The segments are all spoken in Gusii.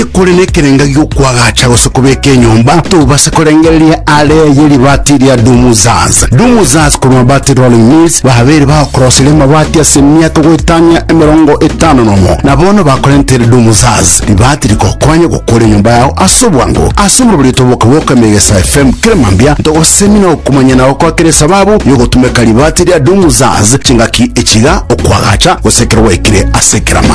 Ekore nekerenga gi'okwagacha gose kobeka enyomba, tobase korengereria are ye ribaati ria Dumuzaz. Dumuzaz korwa Mabati Rolling Mills babeire bagokoroseria amabati ase emiaka goetania emerongo etano nomo, na bono bakorentere Dumuzaz ribaati rigokonya gokora enyomba yao ase obwango. Ase omoroberio toboke boka emegesa FM kera mambia ntogosemia na okomanyana gokwa kera esababu y'ogotumeka ribaati ria Dumuzaz chingaki echiga, okwagacha, gose ekero gwaikire ase ekerama.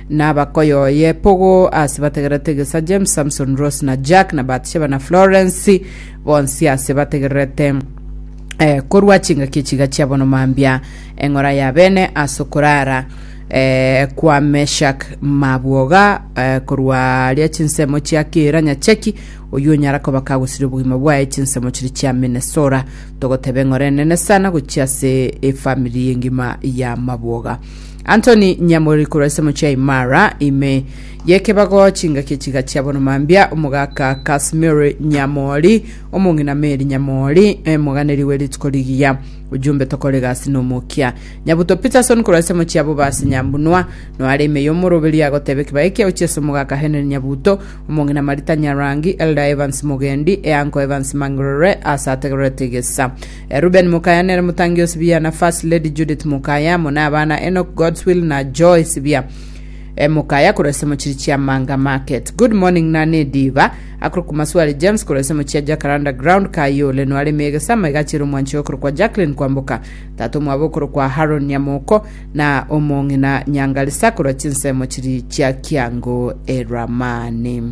Nabakoyoye Pogo ase bategererete Gesa, James, Samson, Rose na Jack na Batsheba na Florence bonsi ase bategererete eh, korwa chingaki echiga chia bono mambia eng'ora ya bene ase okorara eh, kwa Meshak mabwoga eh, korwa ria chinsemo chia kera nyacheki oyio onyara koba kagosiria obogima bwaye chinsemo chiri chia Minnesota togoteba eng'ora enene sana gochia ase efamili engima ya mabwoga Anthony Nyamori korwa ase Mochei Mara, ime y'ekebago chingaki chiga chia bono mambia, omogaka Casimiri Nyamori, omong'ina Meri Nyamori, omoganeri we rituko rigiya. Ujumbe tokore egasi na omokia. Nyabuto Peterson korwa ase mochie abo base Nyambunua, noare ime y'omoroberio agoteba ekebao ekia gochia ase omogaka Henry Nyabuto, omong'ina Marita Nyarangi, Elder Evans Mogendi, e Uncle Evans Mang'irore ase ategererete egesa. Reuben mokaya nere motangi o Sibia, na First Lady Judith mokaya, amo n'abana Enoch, Godswill, na Joy Sibia e mokaya korwa ase mochiri chia Manga Market. Good morning na nediba akorwa kwa Maswari James korwa ase mochia Jacaranda Ground kaye ole nware emegesa ama igachire omwanchio okorwa kwa Jacqueline kwamboka tata omwabo okorwa kwa Haron Nyamoko na omong'ina Nyangalisa korwa chinsemo chiri chia Kiango Eramani.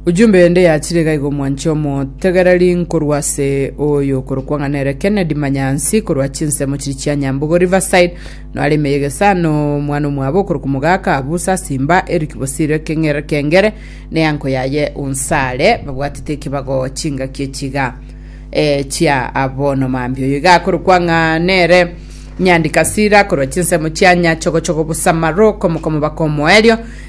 Ujumbe ende yachire iga igo mwanche omotegereri nkorwa ase oyo okorokwa ng'a nere Kennedy Manyansi korwa chinsemo chiri chia Nyambogo Riverside noare ime y'egesano omwana omwabo okorokwa omogaka Abusa Simba Eric Bosire Keng'ere Kengere ne anko yaye Onsare babwatete ekebago chingaki echiga eh, chia abono mambia oyo iga akorokwa ng'a nere Nyandikasira korwa chinsemo chia Nyachogochogo Busamaro komokomo bakomoerio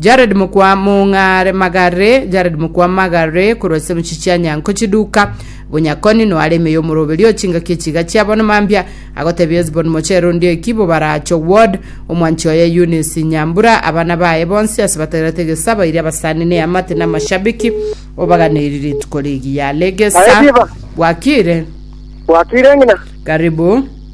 Jared mokwa Mong'are Magare, Jared mokwa Magare, korwa ase emechie chia Nyanko chiduka, Bonyakoni, Noare ime y'omoroberi o chingaki echiga chia bono mambia, agotebia Hesbon mochere onde eki, Bobaracho Ward, omwanchi oye Eunice Nyambura, abana baye bonsi ase bategerete egesa, bairi abasani ne amate na amashabiki, obaganeiri rituko rigiya. Legesa, Naye Diva. bwakire, Bwakire ng'ina. karibu.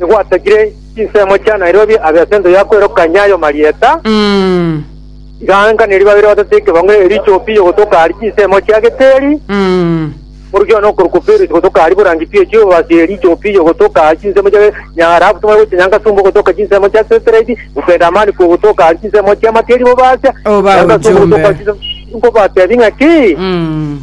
igwatakire chinsemo chia Nairobi abe as'ense ya kwerokania ayo marieta, Mm. igaanganeria babere batato ekebango erio echopi yogotoka aria chinsemo chia Geteri, Mm. morukia one okorokwa Perusi gotoka aria borangi pi echio basi eria echopi yogotoka aria chinsemo chia Nyagarabu tomare gocha Nyangasumba ogotoka chinsemo chia Seteredi, Bupedamani kwo gotoka aria chinsemo chia Makeri bobasia, Oba Nyangasumba ogotoka ochombe. chinsemo- nkobatebi ng'aki? Mm.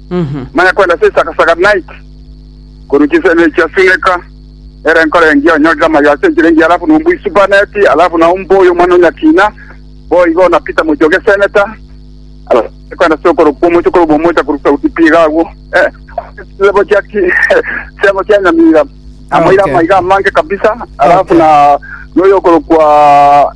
Manya kwenda ase esaga-saga night korwa chisemi echia Suneka ere enkoro engiya onyorire amayoo ase enchera engiya alafu nombue isubaneti alafu nao mboye omwana o nyakina boigo na Peter mochie o geseneta alafu manye kwenda ase okoro kw'omochie korwa obomocha korwa sauti pi iga agwo eh, ase chisebo chia ki- chisebo chia nyamira amoire Okay. amaiga amange kabisa alafu Okay. na noyo okoro kwa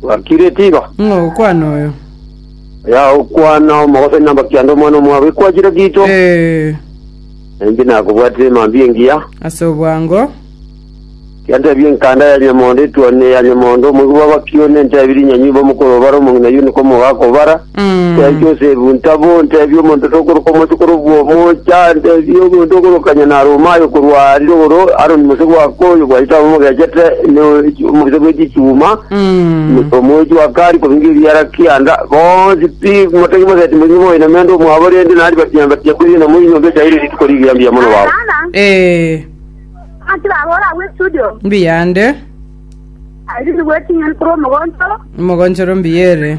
Gwakireti igo. Ng'a ogokwana oyo. Ya okwana omogosori na mbakianda omwana omwabo ekwachire gito. Eh, Na inche nakobwatire emambia engiya. ase obwango. Yantebia enkanda ya nyamondo etuanire ya nyamondo, omoigwa bw'abakioni entebirie nyanyimba omokoro obare omong'ina yuniko omogaka obara. Tiancha Yosefu, ntaba ontebie omonto tokoroka omwasi korokwa omocha, ntebie omonto okoroka nyene are omaye okorwa aa arire igoro, Aroni mose gwaka oyo bwaito abe omogechete ne omogisa bwe chichuma, omoechi wa kari kobinga ebiara kianda, bonsi pi motaki moseti moinge moiname ande omwabo, rende na ribatia na ribatia kori enamo y'enyomba echaire rituko rigiya mbuya mono baba. Ee, mbuya ande, omogonchoro mbuya ere.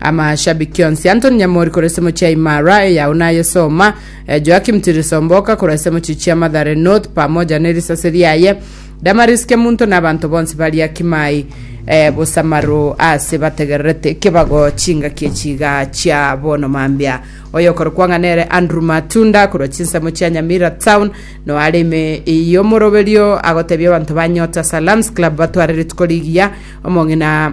Amashabiki onsi, Anthony Nyamori korwa esemochi ya Imara, eyao nayesoma, eh, Joakim Tirisomboka korwa esemochi chia Mathare North pamoja nerisase riaye, Damaris Kemunto na abanto bonsi baria Kimai eh, Bosamaro ase bategererete kebago chingaki echiga chia bono mambia. Oyokorokwa ng'a nere Andrew Matunda korwa chinsemo chia Nyamira Town noare ime y'omoroberio agotebia abanto ba Nyota Salams Club batware rituko rigiya omong'ina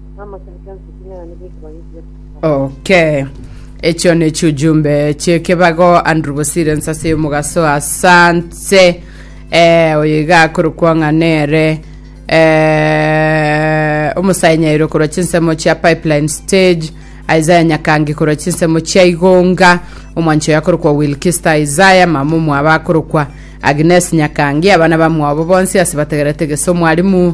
Okay. Echio ne chiujumbe chiekebago Andrew Bosire nsase yomugaso asante eh, oyo iga akorokwa ng'a nere eh, omosae nyairo korwa chinsemo chia pipeline stage isaya nyakangi korwa chinsemo chia igonga omwancho yakorokwa wilkista isaya mama omwabo akorokwa agnes nyakangi abana bamwabo bonsi ase bategerete geso mwarimu